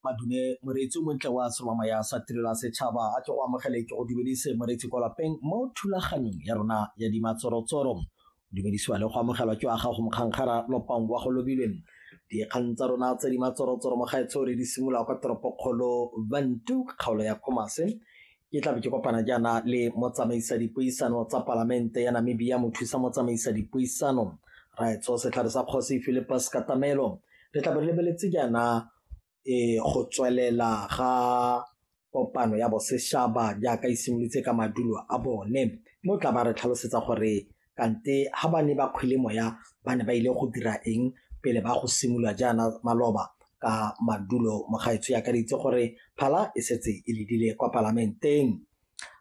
madume moreetsi o montle wa serwama ya sa tirela setšhaba a tle go amogele ke go dumedise moreetsi kwa lapeng mo thulaganyong ya rona ya dimatsorotsoro dumedisiwa le go amogelwa ke wa gago mokgankgara lopang wa go lobileng dikgang tsa rona tse di matsorotsoro mo gaetsho re di simolola kwa toropokgolo bantu kgaolo ya khomase Ke tlabe ke kopana jaana le motsamaisa dipuisano tsa palamente ya Namibia mothusa motsamaisa dipuisano raetso setlhare sa kgosi Philippus Katamelo re tlabe re lebeletse jaana e go tswelela ga kopano ya boseshaba jaaka e simolotse ka madulo a bone mo tla ba re tlhalosetsa gore kante ha ba ne ba kgwele moya ba ne ba ile go dira eng pele ba go simolola jaana maloba ka madulo mogaetsho ya ka re itse gore phala e setse e ledile kwa palamenteng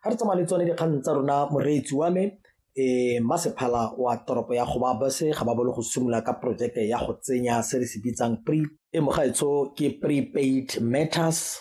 ga re tsamaya le tsone dikgang tsa rona moreetsi wa me e masephala wa toropo ya go ba base ga ba bolo go simolola ka porojeke ya go tsenya se re se bitsang pre e mogaetsho ke prepaid matters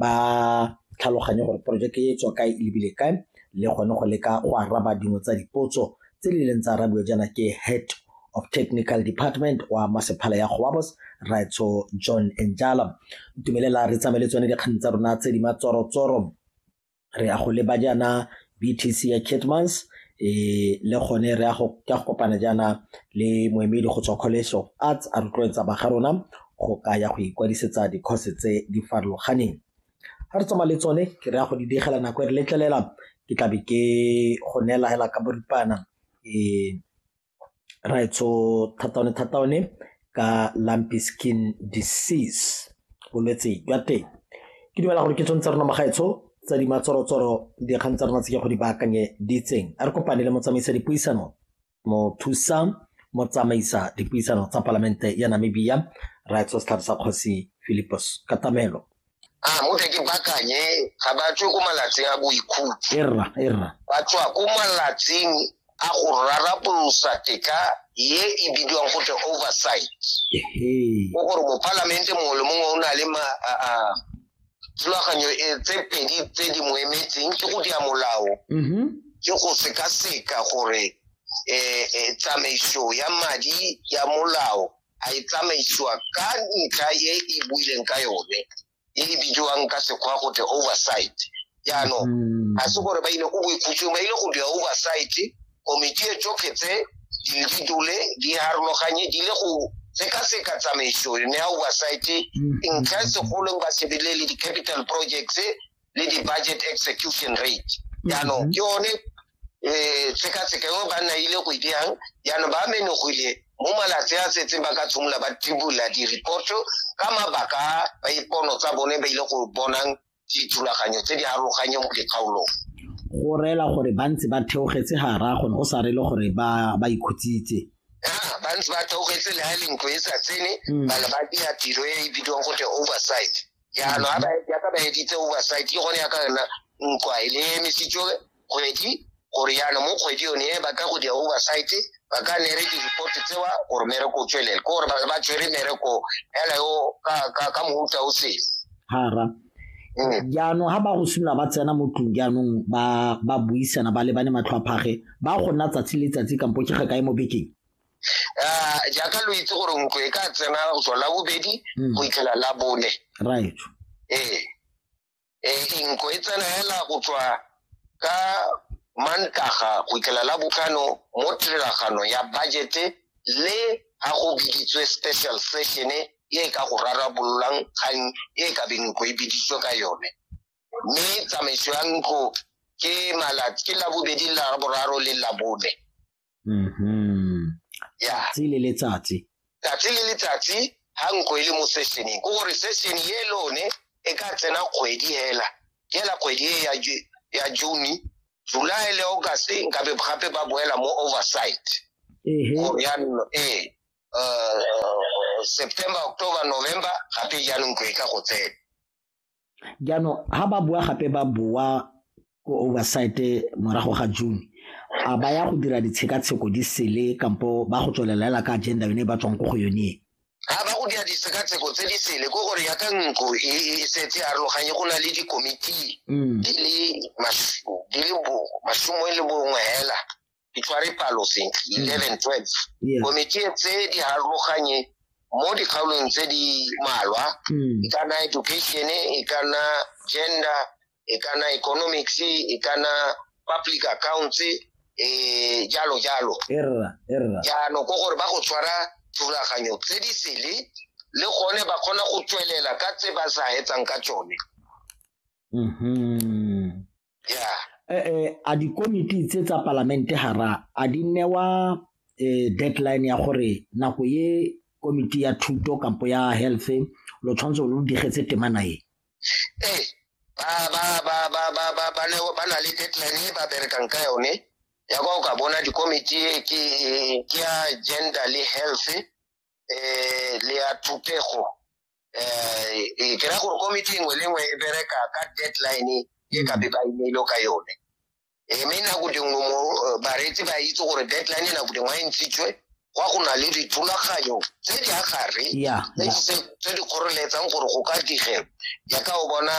ba tlhaloganye gore porojeke e tswa kae e lebile kae le gone go leka go araba dingwe tsa dipotso tse di leng tsa arabiwa jaana ke head of technical department wa masephala ya goabos raitso john enjala ntumelela re tsamaye le tsone dikgang tsa rona tse di matsorotsoro re ya go leba jaana BTC ya Kitmans e le gone re ya go ka go kopana jaana le moemedi go tswa college of arts a rotloetsa ba ga rona go ka ya go ikwadisetsa dikgose tse di farologaneng ga re tsamaya le tsone ke re ya go di digela nako e re letlelela ke tlabe ke go neela hela ka boripana um raetsho thata one thata one ka lumpy skin disease bolwetse jwa teng ke dumela gore ke tshwanetse tsa rona magaetsho tsa di matsorotsoro dikgang tsa rona tse ke go di baakanye di itseng a re kopane le motsamaisa dipuisano mothusa motsamaisa dipuisano tsa palamente ya namibia raetsho setlhabi sa kgosi philipos katamelo a mothe ke bakanye ga ba tswe ko malatsing a boikhutso erra erra ba tswa ko malatsing a go rarapolosa tetla ye e bidiwang go tle oversight o gore mopalamente mongwe le mongwe o na le thulaganyo e tse pedi tse di mo emetseng ke go dia molao mm-hmm. ke go sekaseka gore um tsamaiso ya madi ya molao a e tsamaisiwa ka ntlha e e buileng ka yone e e bidiwang ka sekgwa go te oversight jaanong mm. ga se gore ba ile ko boikhutsong ba ile go dira oversight komiti e tsotlhe tse di di dule di harologanye di le go sekaseka tsamaiso yone ya oversight mm. ntlha e segolong ba shebile le di-capital projects le di-budget execution rate jaanong mhm. ke one um eh, tshekatsheka engwe ba nna ile go dirang jaanong ba menogile mo malatsi a setseng ba ka tshimolola ba tibola di-reporto ka mabaka ba ipono tsa bone ba ile go bonang dithulaganyo tse di aroganye mo dikgaolong go reela gore ba ntse ba theogetse gara gone go sa rele gore ba ikhutsitse ba ntse ba theogetse le ga lentlo e sa tsene hmm. bana ba dira tiro e e bidiwang go te oversight jaanong a ba- yaka ba editse oversight ke gone yaka yona nkwa e le emisitswe kgwedi gore jaanong mo kgwedi yone e ba ka go dia oversight ba ka nere di-report tsewa gore mereko o tswelele ke gore ba- ba tshwere mereko fela yo ka- ka ka mohuta o sele hara Mm. jaanong ha ba go simolola ba tsena mo tlong jaanong ba ba buisana ba lebane matlho a phage ba go nna tsatsi le tsatsi kampo ke ga kae mo bekeng um jaaka lo itse gore ntlo e ka tsena go tswa la bobedi Mm. go itlhela la bone right ee ee nko e tsena hela go tswa ka mantaga go itlhela la botlhano mo tiragano ya budgete le ga go biditswe special session e e ka go rarabololang kgang e ka beng nko e biditswe ka yone mme tsamaiso ya ntlo ke malatsi ke la bobedi la boraro le la bone Mhm. Yeah. Tsatsi le letsatsi. Tsatsi le letsatsi ha nko e le mo sessioneng. Ko gore session ye lone e ka tsena kgwedi hela. Ke hela kgwedi e ya Ju- ya June, July le August nka be gape ba boela mo oversight. Ehe. Go jaanong ee uh, September, October, November gape jaanong ko e ka go tsena. Jaanong ha ba boa gape ba boa ko oversight morago ga June a ba ya go dira ditshekatsheko di sele kampo ba go tswelela hela ka agenda yone e ba tswang ko go yone ga ba go dira ditshekatsheko tse di sele ko gore yaka ntlo e, e, e setse arologanye go na le dikomiti mm. di le masome le bongwe hela ke tshware palo sentle mm. eleven twelve komiti e tse di harologanye mo dikgaolong tse di malwa mm. e kana education e kana gender e kana economics e kana public accounts e jalo jalo jaanong ko gore ba go tshwara thulaganyo tse di sele le gone ba kgona go tswelela ka tse ba sa etsang ka tsone mm-hmm. yeah eh, eh, a dikomiti tse tsa palamente hara a di newa eh, deadline ya gore nako ye komiti ya thuto kampo ya health lo tshwanetse lo digetse temana e ee ba na le deadline e ba berekang ka yone ya kwa o ka bona dikomiti ke ya gender le health eh le ya thupego eh e kera gore committee engwe le engwe e bereka ka deadline e ka be ba imeile ka yone e mme nako dingwe mo eh, bareetsi ba itse gore deadline nako dingwe a e ntshitswe kwa go na le dithulaganyo tse di agare tse di kgoreletsang gore go ka digelo jaaka o bona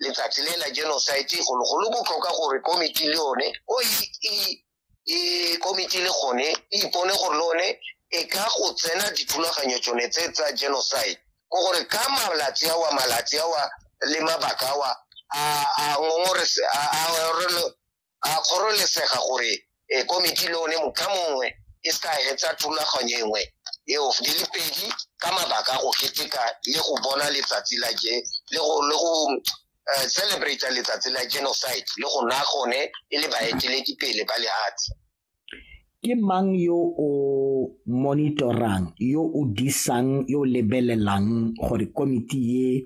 letsatsi le la genocide golo go le botlhoka gore committee le yone o e, e e komiti le gone e ipone gore le one e ka go tsena dithulaganyo tsone tse tsa genocide ko gore ka malatsi awa malatsi awa le mabaka awa a kgorelesega gore e, komiti le one moka mongwe e se ka etsa thulaganyo engwe eo di le pedi ka mabaka go keteka le go bona letsatsi la je le go uh, celebrate letsatsi la genocide le go nna gone e le baeteledipele ba lehatshe ke mang yo o monitorang yo o disang yo lebelelang gore komiti ye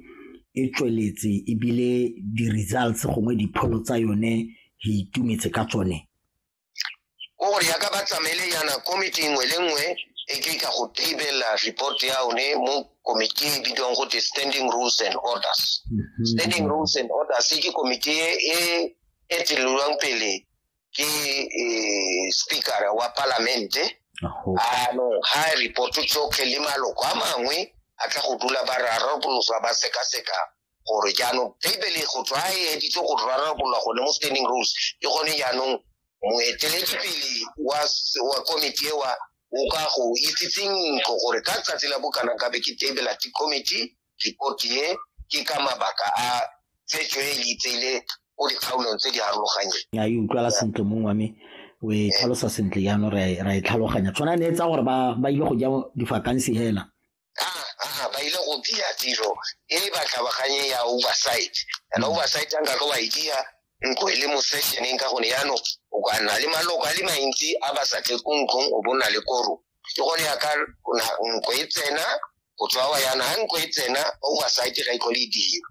e tsweletse ebile di-results gongwe dipholo tsa yone re itumetse ka tsone o gore yaka ba tsamaele yana komiti nngwe le nngwe e ke ka go tabelela report ya one mo komiti e bidiwang gote standing rules and orders mhm. standing rules and orders ke komiti e e, e tselelwang pele ke e, speaker wa palamente anong ga report tsotlhe le maloko a mangwe a tla go dula ba rarabolosa ba sekaseka gore jaanong bibele go tswa e editse go rarabolola gone mo standing rules ke gone jaanong moeteledipele wa komiti ewa o ka go itsitseng ntlo gore ka tsatsi la bokana kabe ke tebela ti committee report e ke ka mabaka a tsetswe e itseile o dikgaolong tse di harologanyeng ya e utlwala sentle mong wa me o e tlhalosa sentle jaanong ra e tlhaloganya tshwana ne e tsa gore ba ile go ja difakansi fela a ba ile go dia tiro e le batlhabaganye ya oversight yana oversight a nka ka wa e dia nko e le mo sessioneng ka gone yano o ka nna le maloko a le mantsi a ba sa tle ko ntlong o bona le koro ke gone ya ka nko e tsena go tswa wa yana ga nko e tsena oversight ga e tlhole e dira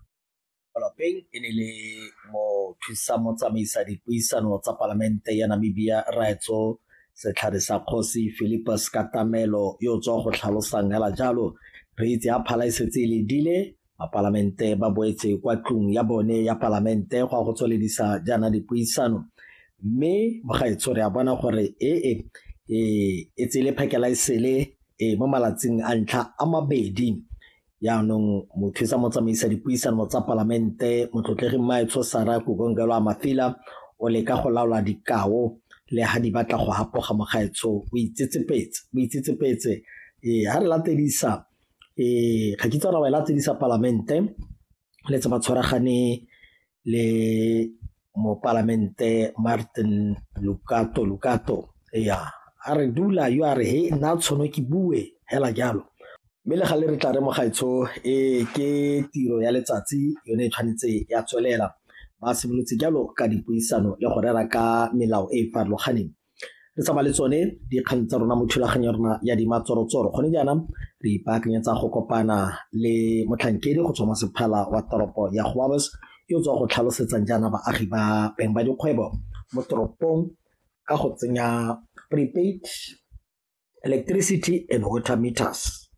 Lapeng e ne le mothusa motsamaisa dipuisano tsa palamente ya Namibia Raetso setlhare sa kgosi Philippus Katamelo yo o tswa go tlhalosang hela jalo re itse a phala e setse e ledile bapalamente ba boetse kwa tlung ya bone ya palamente go a go tsweledisa jaana dipuisano mme mogaetsho re a bona gore ee e tsele phakela e sele e mo malatsing a ntlha a mabedi Yaanong mothusa motsamaisa dipuisano tsa palamente motlotlegi Mmaetsho Sara Kukongelo Amafila o leka go laola dikao le ha di batla go hapoga mogaetsho o itsetsepetse o itsetsepetse ee ha re latedisa ee ga kitse ra wa e latedisa palamente le tse ba tshwaragane le mopalamente Martin Lukato Lukato ya a re dula yo a re he nna tshono ke bue hela jalo mme le ga le re tla re mogaetsho e ke tiro ya letsatsi yone e tshwanetse ya tswelela ba simolotse jalo ka dipuisano le go rera ka melao e e farologaneng re tsamaya le tsone dikgang tsa rona mo thulaganyo ya rona ya dimatsorotsoro gone jaana re ipaakanyetsa go kopana le motlhankedi go tswa mo sephala wa toropo ya goabes yo tswa go tlhalosetsang jaana baagi ba beng ba dikgwebo mo toropong ka go tsenya prepaid electricity and water meters